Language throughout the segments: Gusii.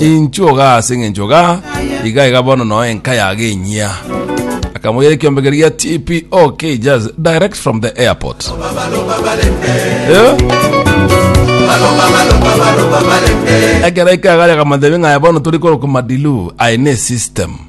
Inchuo igaa ase eng'encho igaa, igaa igaa bono noo enka yago enyia. Akamoira ekiombe keria gia TPO Cages direct from the airport. Eh? Ekero ikaga yakamanya ng'aya bono turi korokwa madilu aye ne system.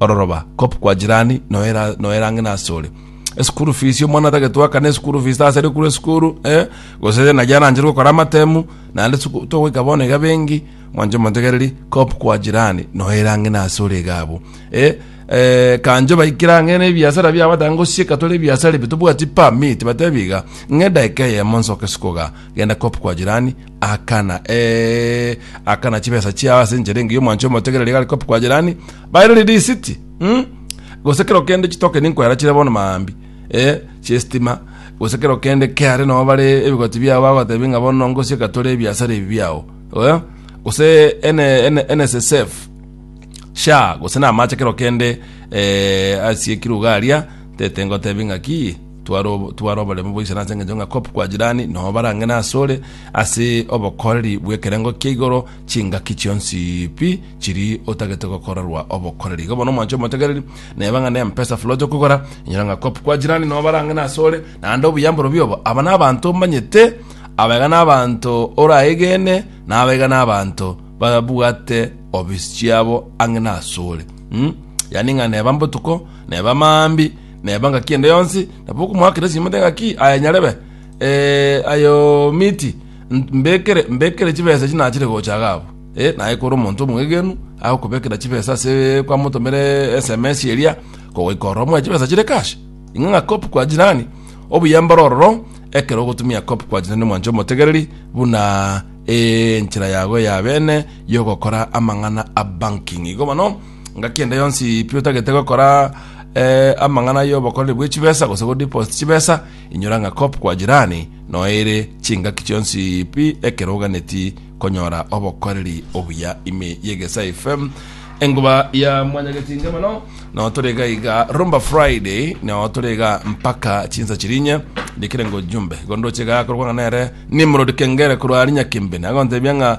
ororoba, kop kwa jirani noera noera ng'ina asore. Esukuru fees omwana atagete wakana esukuru fees tase rekuru esukuru eh, gose yena jana anjere gokora amatemu naende suku togoika bono iga bengi mwanche motegereri kop kwa jirani noera ng'ina asore iga abwo eh, eh, kanjo baikire ang'e na ebiasara biabo batanga gosieka tore ebiasara ebi tobwati permit batebi iga ng'e edaika eyemo nsoke sukoga genda kop kwa jirani Akana, ee, akana chibesa chiao ase enchera engiya omwancho omotegereri iga arikope kwa jirani, bairori risiti, mm? gose kero kende chitokeni nkoera chire bono maambi, eh, chiestima, gose kero kende keare nao bare ebigoti biao bagotebi ng'a bono ngosie gatore ebiasara ebi biao, eh? gose ene, ene, NSSF, sha gose na amache kero kende eh, asiekirwe iga aria tete ngotebi ng'a ki Tware tware oboremu boiso nase engencho ng'a kop kwa jirani no barang'e nase ore ase obokoreri bw'ekerengo kia igoro chingaki chionsi pi chiri otagete gokorerwa obokoreri. Igo bono omwancho omotegereri neba ng'a ne mpesa fuloti okogora enyora ng'a kop kwa jirani no barang'e nase ore naende obuya mborobio obo aba na abanto omanyete abaiga na abanto oraegene na abaiga na abanto babwate obisi chiabo ang'e nase ore mm yani ng'a neba mbotuko neba maambi Neba ngaki ende yonsi, nabo okomoakera esimo ende ngaki, Aya nyarebe, ee, ayo miti, n- mbekere, mbekere chibesa echi nachire gocha iga abwo. Eh, naye kore omonto omwegenu, agokobekera chibesa ase kwamotomere sms eria, kogoika ororo mwaye chibesa chire cash. Ing'e ng'a cop kwa jirani, obuya mboro ororo, ekero ogotumia cop kwa jirani mwanche omotegereri, buna enchera yago ya bene yogokora amang'ana a banking. Igo bono, Engaki ende yonsi pi otagete gokora eh, amang'ana y'obokoreri bwe chibesa gose godeposit chibesa inyora ng'a cop kwa jirani noere chingaki chionsi pi ekero oganeti konyora obokoreri obuya ime yegesa fm enguba ya mwanyagetinge mono no torega iga rumba friday no torega mpaka chinsa chirinye ndikire ngo jumbe gondoche ga korwa ng'a nere nimrod kengere korwa ari nyakimbe nagontebia ng'a